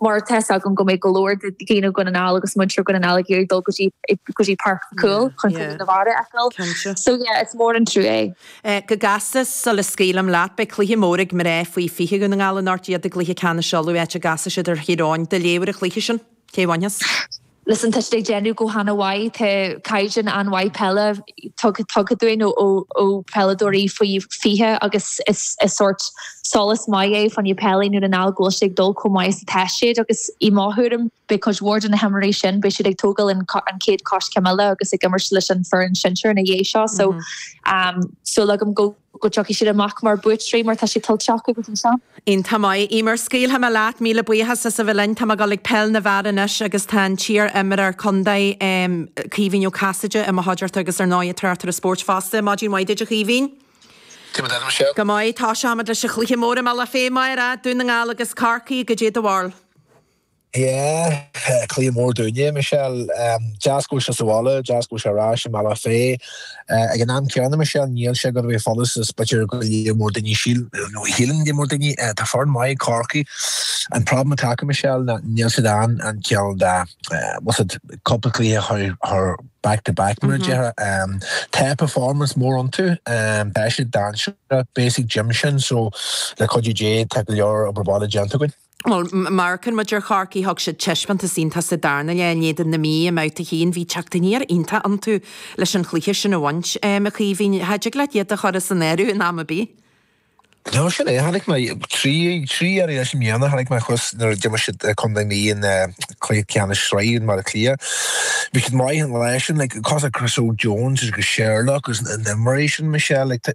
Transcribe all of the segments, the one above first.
mar tá 's agam go mbeidh go leor de dhaoine Dhún na nGall agus muintir Dhún na nGall ag iarraidh dul go dtí, go dtí Páirc Mhic Cumhaill Yeah, chun cluiche yeah. na bhFear a fheiceáil. Cinnte. So yeah, is mór an trua é. Eh, go gasta, sula scaoilim leat, beidh cluiche mór ag mná faoi 20 Dhún na nGall anocht, iad i gCluiche Ceannais Uladh, áit a gcasfaidh siad ar Thír Eoghain. Do léamh ar an chluiche sin? Cé a bhainfeas? Listen, tá siad ag déanamh go hana-mhaith, tá caighdeán an-mhaith peile tugtha dúinn ó pheileadóirí faoi 20 agus is sórt sólás maith é fá choinne peil i nDún na nGall go bhfuil sé ag dul chomh maith is atá siad agus i mo thuairim, beidh cuid mhór de na himreoirí sin, beidh siad ag tógáil an chéad choiscéim eile agus ag imirt leis an foireann sinsear ina dhiaidh seo so tá súil agam go. go dtiocfaidh siad amach mar buaiteoirí mar tá sé tuillte acu go dtí seo. Iontach maith, Emer, scaoilfidh mé leat, míle buíochas as a bheith linn, tá mé ag dul ag peil na bhfear anois agus tá an t-iar-imreoir contae, em, Caoimhín Ó Casaide i mo chuideachta agus ar ndóigh an tráchtaire spóirt fosta, maidin mhaith duit a Chaoimhín. Céard a deir sé? Go maith, tosóimid leis an chluiche mór i mBealach Féich amárach, Dún na nGall agus Corcaigh, goidé do bharúil. Yeah, cluiche mór dúinne é, Michelle. Deas go bhfuil sé sa bhaile, deas go bhfuil sé ar ais i mBealach Féich. Ag an am céanna, Michelle, níl sé ag dul a bheith furast is b'fhéidir go leor mór daoine síleann, nó shíleann go leor daoine. Tá foireann maith ag Corcaigh. An problem atá acu, Michelle, ná níl siad in ann ceann dá, what's it, cúpla cluiche a chur chur back to back, mar a déarfá. Tá performance mór iontu. Tá siad dainséarach, beidh a fhios ag Jim sin, so le cuidiú Dé tá go leor obair bhaile déanta againn. bhuel, má amharcann muid ar Chorcaigh, thug siad taispeántas iontach sa darna leath in éadan na Mí i mbabhta 1, bhí teacht aniar iontach iontu leis an chluiche sin a bhaint, a Chaoimhín, cha dtig leat iad a chur as an áireamh in am ar bith. No, sin é, chonaic mé iad trí, trí iarraidh leis an mbliana, chonaic mé iad thuas nuair a d'imir siad contae na Mí in cluiche ceannais sraithe in mBaile Átha Cliath, bhí siad maith an lá sin, like, tá Chris Óg Jones agus Sherlock agus na himreoirí sin, Michelle, like,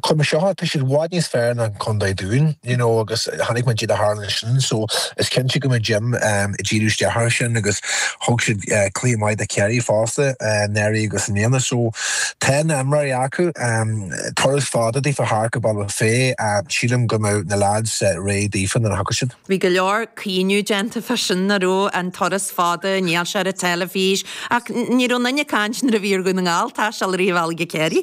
Chuir mé seo, tá siad i bhfad níos fearr ná Contae an Dúin, you know agus chonaic muid goidé a tharla ansin so is cinnte go mbeidh Jim ehm ag díriú isteach air sin agus thug siad eh cluiche maith do Kerry fosta eh anuraidh agus i mbliana so tá na himreoirí acu ehm turas fada daofa thart go Bealach Féich ehm sílim go mbeidh na lads eh réidh daofa nuair a thiocfaidh siad. Bhí go leor caoineadh déanta fá sin go raibh an turas fada, níl sé ar an teilifís ach ní raibh aon duine ag caint nuair a bhí ar Dhún na nGall taisteal i rith an bhealaigh go Kerry.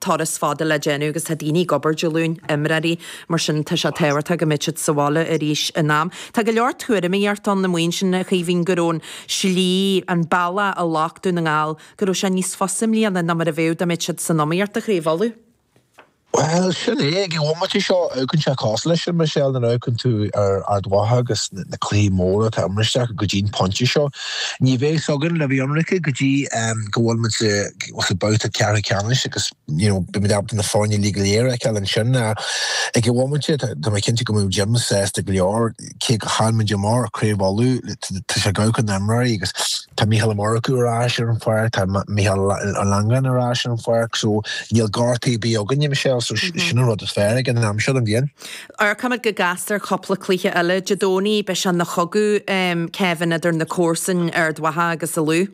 turas fada le déanamh agus tá daoine ag obair Dé Luain, imreoirí, mar sin tá sé tábhachtach go mbeidh siad sa bhaile arís in am. Tá go leor tuairimíocht ann, na maoin sin, a Chaoimhín, go raibh an tslí, an bealach a ghlac Dún na nGall, go raibh sé níos fusa i mbliana ná mar a bheadh dá mbeadh siad san iomaíocht, do Chraobh Uladh. Bhuel, sin é, ag an bhomaite seo amharcann sé cosúil leis sin, Michelle, nuair a amharcann tú ar Ard Mhacha agus na cluichí móra atá imeartha acu go dtí an pointe seo. Ní bheidh 's againn le bheith ionraic go dtí go bhfuil muid sa babhta ceathrú ceannais agus you know beidh muid ábalta na foirne uilig go léir a fheiceáil ansin ag an bhomaite. Tá mé cinnte go mbeidh Jim sásta go leor cé gur chaill muid amach ar Craobh Uladh, tá sé ag amharc ar na himreoirí agus tá Micheál Ó Murchú ar ais ar an pháirc, tá Micheál Langan ar ais ar an pháirc so níl gortuithe ar bith againne, Michelle, so sin an rud is fearr ag an am seo den bhliain. Amharcfaimid go gasta ar cúpla cluiche eile Dé Domhnaigh, beidh sé ina chogadh, Kevin, idir na comharsain Ard Mhacha agus an Lú.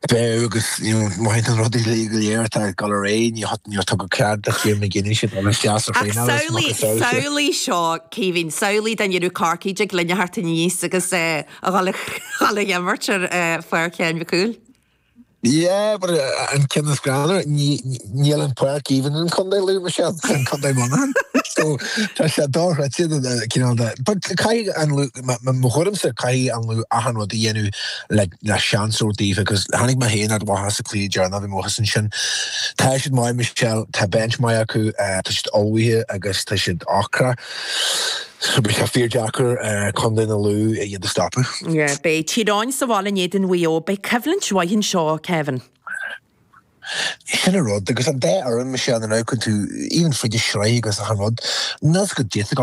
Beidh, agus mothaíonn an rud uilig go léir atá ag dul ar aghaidh, níor tugadh cead do Kieran McGeeney sin a bheith isteach ag traenáil, is maith is samhlaigh, eol sé. samhlaigh seo, Caoimhín, samhlaigh dá ndéanadh Corcaigh dtig linne theacht aníos agus a dhul a dhul ag imirt ar pháirc Sheáin Mhic Cumhaill. Yeah, but an ceann is greannmhar, níl an páirc even in Contae Lú, Michelle, is in Contae Muineachán, so tá sé dochreidte do na, you know, the, but caithfidh an Lú, mo thuairimse, caithfidh an Lú achan rud a dhéanamh le, le seans a thabhairt daofa, cause chonaic mé féin Ard Mhacha sa chluiche deireanach, bhí mé thuas ansin. Tá siad maith, Michelle, tá bench maith acu, tá siad ullmhaithe agus tá siad ocrach. Beidh sé fíor deacair Contae an Lú iad a stopadh. Beidh Tír Eoghain sa bhaile in éadan Mhaigh Eo, beidh coimhlint mhaith anseo, Kevin. Sin an rud, agus an dá fhoireann, Michelle, amharcann tú, even fríd an tsraith agus achan rud, an rud is go dtiocfadh